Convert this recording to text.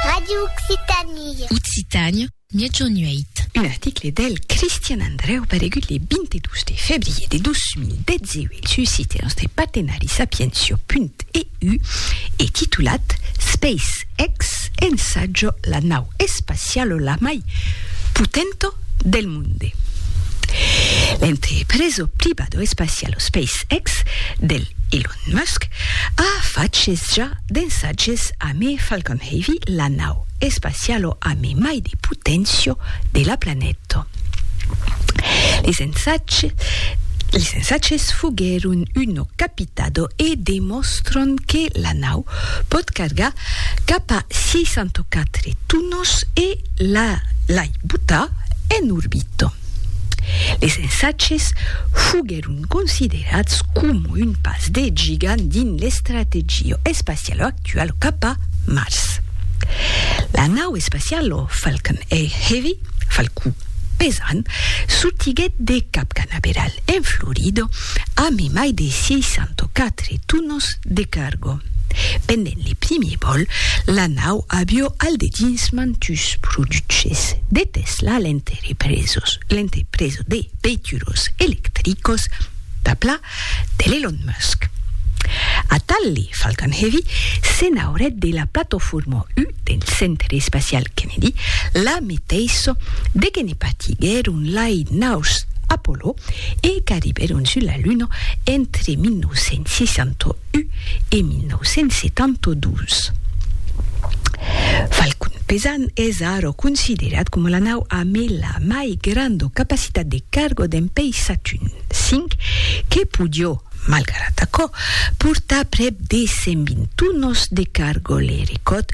Radio Occitanie. Occitània, miègjorn 8. Un article del Cristian Andrèu paregut le 22 de febrièr de 2018 sus sitèus de partenari sapientia.eu e titulat SpaceX ensaja la nau espaciala la mai potenta del monde. L'entrepreso privado espacialo SpaceX del Elon Musk a faches ja d'ensatges amé Falcon Heavy, la nau espacialo amé mai de potencio de la planeta. Les ensatges foguèron uno capitado e demòstran que la nau pòt cargar Cap a 604 tunos e la l'ai buta en orbita. Les ensatges foguèron considerats coma un pas de gigant dins l'estrategia espaciala actuala cap a Mars. La nau espaciala Falcon Heavy, Falcon pesant, sortiguèt de Cap Canaveral en Florida a mai de 604 tunos de carga. Pendent le primier vòl, la nau avió al dedins mantus produches de Tesla a l'entrepresos l'entrepreso de veituros electricos d'Apla de l'Elon Musk. Atal le Falcon Heavy se n'aurèt de la platofòrma U del Centre Espacial Kennedy, la meteissa de que ne partiguèron lai naus Apollo e qu'arribèron sus la Luna entre 1969 U e 1972. Falcon Pesant es ara considerat coma la nau amb la mai granda capacitat de carga dempeis Satun V, que podió, malgrat aquò, portar prèp de 120 tonas de carga, le recòrd